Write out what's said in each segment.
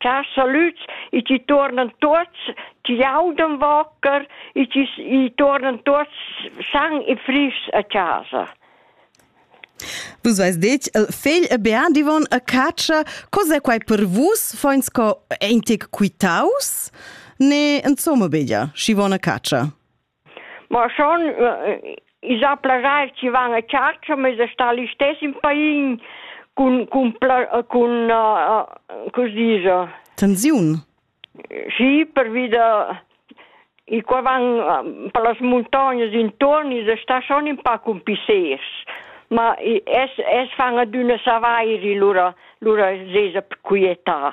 Char salüds, i chi tuornan tuots, chi audan vocker, i chi i tuornan tuots san e fris a chasa. Vus vais detg, il fegl e bean divon a catscha, cos'è quai per vus? Foins co eintic quitaus? Ne, insomma, begia, schi von a catscha. Ma schon i sa plaschair chi van a chatscha, ma esa stà l'istess in pain cun cun cun che s'dicha? Tensiun? Schi, pervi da i qua van per las muntognas intuorn esa stà schon ün pa cun pissers, ma es es fan adüna savairi, lura lura s'esa quietà.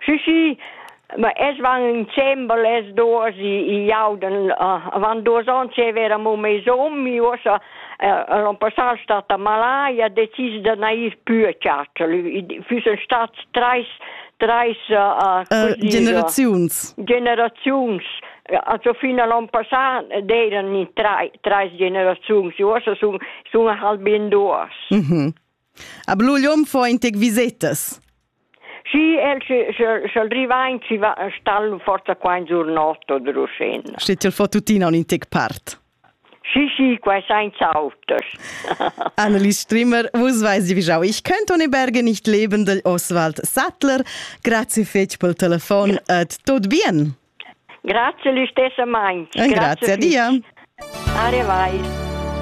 Schi schi, ma els van in dschember les duos, i i jaudan avant duos ons e vera mo meis hom, i uossa l'on passà stat a malaia, decis da nair pü a Chatschel. I füssen stats trais trais generaziuns. Generaziuns. Also fin a l'on passà d'eiran in trais generaziuns, uossa sun sun halb in duos. Mh-mh. A Blugliom fo in tec visetas. Sì, el sch'el driva in ci va stal forza qua in giornotto de Rusin. Steht el fo tuttina un in tec part. Sì, sì, qua senza autos. Annelies Strimmer, vus weiß wie jau, ich könnte ohne Berge nicht leben, del Oswald Sattler. Grazie fetch pel telefon et tot bien. Grazie, l'istessa meins. Grazie, grazie a dir. Arrivai.